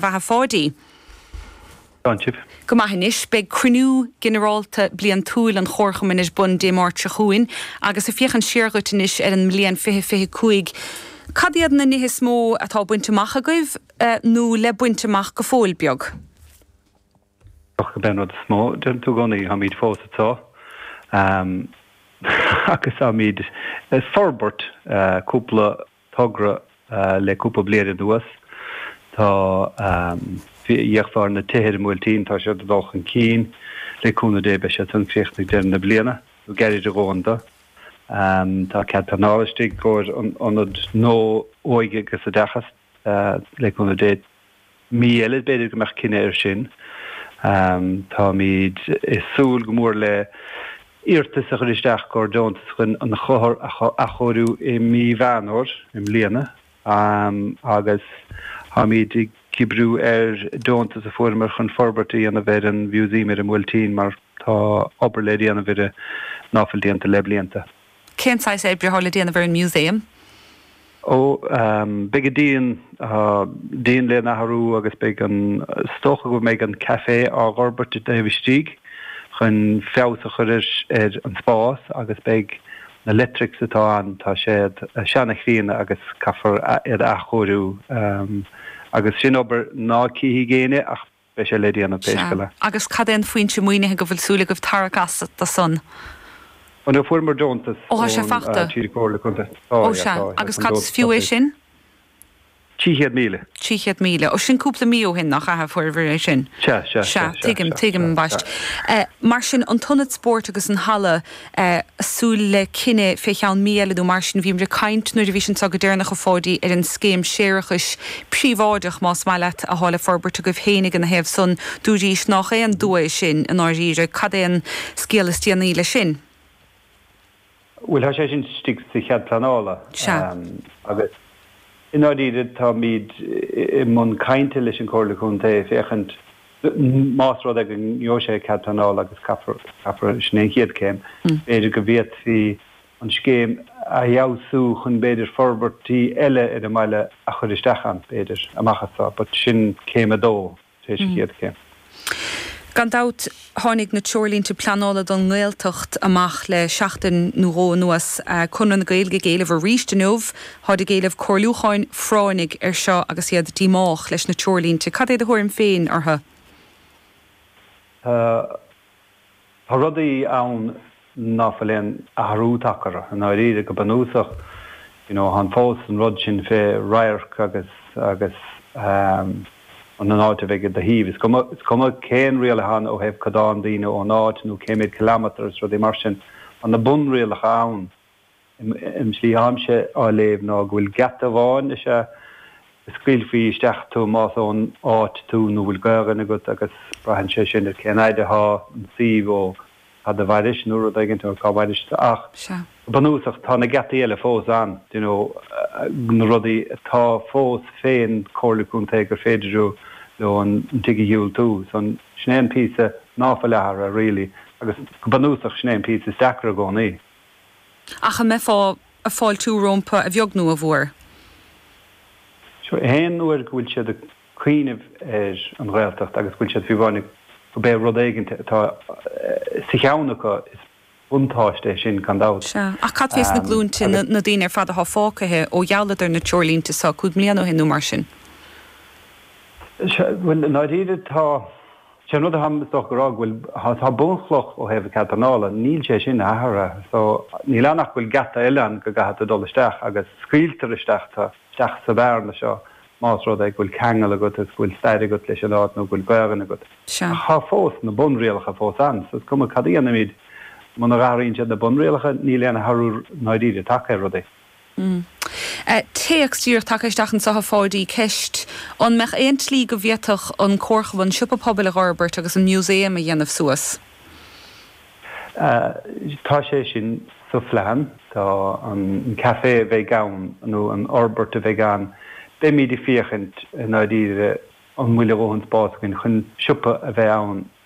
bheatha Pháidí. Slán sibh. Go maith anois. Beidh cruinniú ginearálta bliantúil an Chomharchumainn ar bun Dé Máirt seo chugainn agus ag féachaint siar dhuit anois ar an mbliain fiche fiche cúig, cad iad na nithe is mó atá bainte amach agaibh nó le baint amach go fóill beag? Bíodh gurb é an rud is mó, deireann tú i gcónaí, táimid fós ag treabhadh agus táimid ag forbairt cúpla togra le cúpla bliain anuas. Tá fé mar na tithe ar an mBuailtín, tá siad ag dul chun cinn le cúnamh Dé, beidh siad san críochnaithe deireadh na bliana, nó gairid a dhóthain dó. Tá cead pleanála istigh i gcomhair an ionad nua óige agus oideachais, le cúnamh Dé, mí eile, b'fhéidir go mbeadh cinneadh air sin. Táimid ag súil go mór le hiarratas a chur isteach i gcomhair deontas chun an Chathair a athchóiriú i mí Mheán Fhómhair i mbliana agus táimid ag oibriú ar deontas a fuaireamar chun forbairt a dhéanamh ar an Mhúsaem ar an mBuailtín mar tá obair le déanamh air ná fuil déanta le blianta. Cén saghas oibre atá le déanamh ar an Músaem? Ó, beidh an díon, díon le n-athrú agus beidh an, is dócha go mbeidh an café á dh'fhorbairt i dtaobh istigh chun feabhas a chur ar, ar an spás agus beidh na leictrics atá ann, tá siad seana-chríonna agus caithfear iad a athchóiriú agus sin obair ná cífidh éinne ach. Beidh sé le déanamh pé scéal é. Sea. Agus cad é an foinse maoinithe go bhfuil súil agaibh tarrac as do san? Ó no, fuaireamar deontas Ó, tá sé fachta. tríd an gComhairle Contae. Tá, Ó, yeah, sea. tá, yeah, tá an deontas fachta. Agus cad is fiú é sin? Trí chéad míle. Trí chéad míle. Ó, sin cúpla mí ó shin, nach ea, a fuaireabhair é sin? Sea, sea, sea, Sea. sea, Tuigim, sea, tuigim, sea, sea. ambaist. Mar sin, an t-ionad spóirt agus an halla, ag súil le cinneadh fé cheann mí eile nó mar sin. Bhíomar ag caint nuair a bhís anso go deireanach a Pháidí ar an scéim séarachais príobháideach más maith leat athá le forbairt agaibh féin ina thaobh san. Dúraís nách é an dua sin i ndáiríre. Cad é an scéal is déanaí leis sin? Bhuel thá sé sin istigh sa chead pleanála Sea. agus i ndáiríre táimid i mbun cainte leis an gComhairle Contae féachaint D, Más rud é go ngeobhadh sé cead pleanála, agus caithfear, sin é an chéad chéim, b'fhéidir go bhféadfaí an scéim a fheabhsú chun b'fhéidir forbairtí eile ar an mbaile a chur isteach ann, b'fhéidir, amach anseo, but sin céim a dó tar éis an chéad chéim. Gan dabht, tháinig na treoirlínte pleanála don nGaeltacht amach le seachtain nó dhó anuas. Conradh na Gaeilge ag éileamh arís inniu, Táid ag éileamh comhairliúcháin phráinnigh air seo agus iad díomách leis na treoirlínte. Cad é do thuairim féin orthu? Tá rudaí ann ná fuil aon athrú tagtha orthu. I ndáiríre, go bunúsach, you know, thá'n fós an rud sin fé radharc agus, agus ehm, an áit a bheidh i do thaoibh. Is cuma, is cuma cén riail athá ann ó thaobh codán daoine ón áit nó cé méid kilometre is rudaí mar sin, tá na bunrialacha ann. An tslí atáimse á léamh ná go bhfuil geata amháin is ea a scaoilfí isteach tú más ón áit tú nó bhfuil Gaelainn agat agus braitheann sé sin ar cén fhaid athá an suíomh ó cad a mhairis nó rud éigin or cá mhairis tú ach go bunúsach tá na geataí eile fós ann d'you know na rudaí atá fós fén Comhairle Contae gur féidir leo an tigh a dhiúltú so sin é an píosa ná fuil athartha really agus go bunúsach sin é an píosa is deacra i gcónaí. Ach an mbeifeá a' fáiltiú rómpa a bheag nú a mhuar? Sea, aon uair go bhfuil siad a' cuíneamh ar an Ghaeltacht agus go bhfuil siad faoi bhráid go b'é rud éigint atá sa cheann acu, is buntáiste é sin gan dabht. Sea, ach cad fé sna glúinte, na, na daoine ar fad athá fágthaithe ó ghealladar na treoirlínte so, cúig mbliana ó shin nú mar sin? Sea, bhuel i ndáiríre tá. Sé an rud atáim, is dócha, a rá go bhfuil, tá bunchloch ó thaobh cead pleanála, níl sé sin athartha so níl ann ach go bhfuil geata eile ann go gcaithfidh tú dul isteach agus scaoiltear isteach tú, isteach sa bhearna seo más rud é go bhfuil ceangal agat agus go bhfuil stair agat leis an áit nó go bhfuil Gaelainn agat. Ach tá fós na bunrialacha fós ann so is cuma cad a dhéanaimid, muna athraíonn siad na bunrialacha, níl aon athrú, i ndáiríre, tagtha ar rudaí. Téacs díreach tagtha isteach anso chugat, a Pháidí, ceist, An mbeadh aon tslí go bhféadfadh an comharchumann an siopa pobail a dh'fhorbairt agus an Museum a dhéanamh suas? Tá sé sin sa phlean. Tá an caifé a bheidh ann nó an fhorbairt a bheidh ann, beimid ag féachaint i ndáiríre an bhfuil a dhóthain spás againn chun siopa a bheith ann